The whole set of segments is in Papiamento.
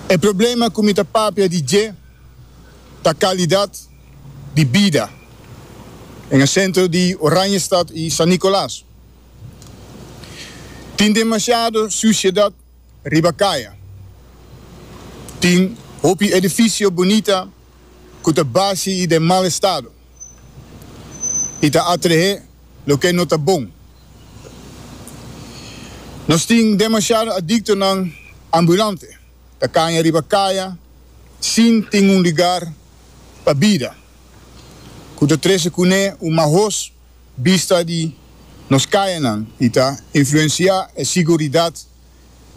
E problema ku mi ta papia di dje ta kalidat di bida den e sentro di Oranjestad i San Nikolaas. Tin demasiado susiedat riba kaya. Tin hopi edifisio bunita ku ta basi i den mal estado. i ta atrehé loke no ta bon. Nos tin demasiado adiktonan ambulante ta kaña riba kaya sin tin un lugar pa bida ku ta trese kuné un mahos bista di nos kayanan i ta influensiá e siguridat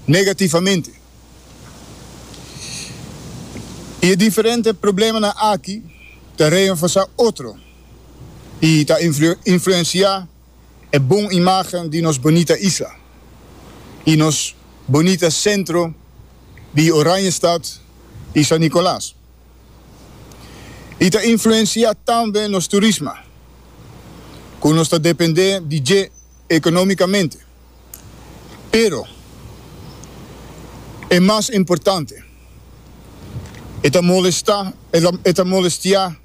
negativamente. I e diferente problemanan aki ta reenforsá otro i ta influensiá e bon imágen di nos bonita isla i nos bonita sentro di Oranjestad i San Nicolas. I ta influensiá tambe nos turisma, ku nos ta dependé di dje. economicamente, pero e mas importante e ta molesta e ta molestia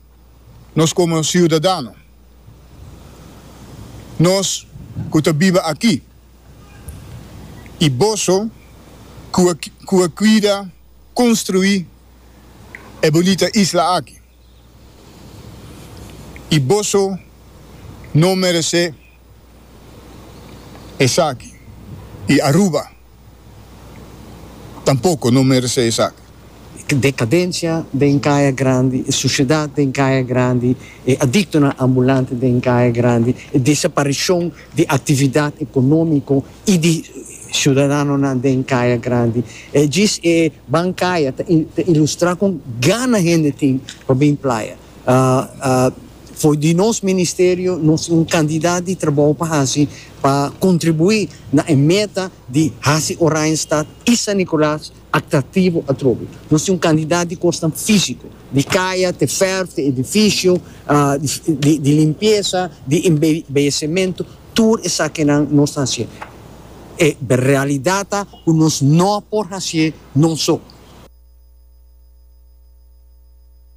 nos como ciudadano, nos cu ta biba aki y boso cu a cuida construi e bunita isla aki. I boso no meresé esaki. I Aruba tampoko no meresé esaki. Decadencia den Caya Grandi, e suciedad den Caya Grandi, e adictonan ambulante den Caya Grandi, e desaparicion di actividad economico, y di ciudadanonan den Caya Grandi. E djis e bancaya ta ta ilustra con gana hende tin pa bin playa. Fo'i di nos ministerio nos tin un cantidad di trabou pa haci pa contribui na e meta di haci Oranjestad y San Nicolas atractivo atrobe. Nos tin un cantidad di cosnan fisico, di caya te ferf te edificio, di limpieza, di embellecemento, tur esakinan nos ta hacié. E realidad ta cu nos no por hacié noso.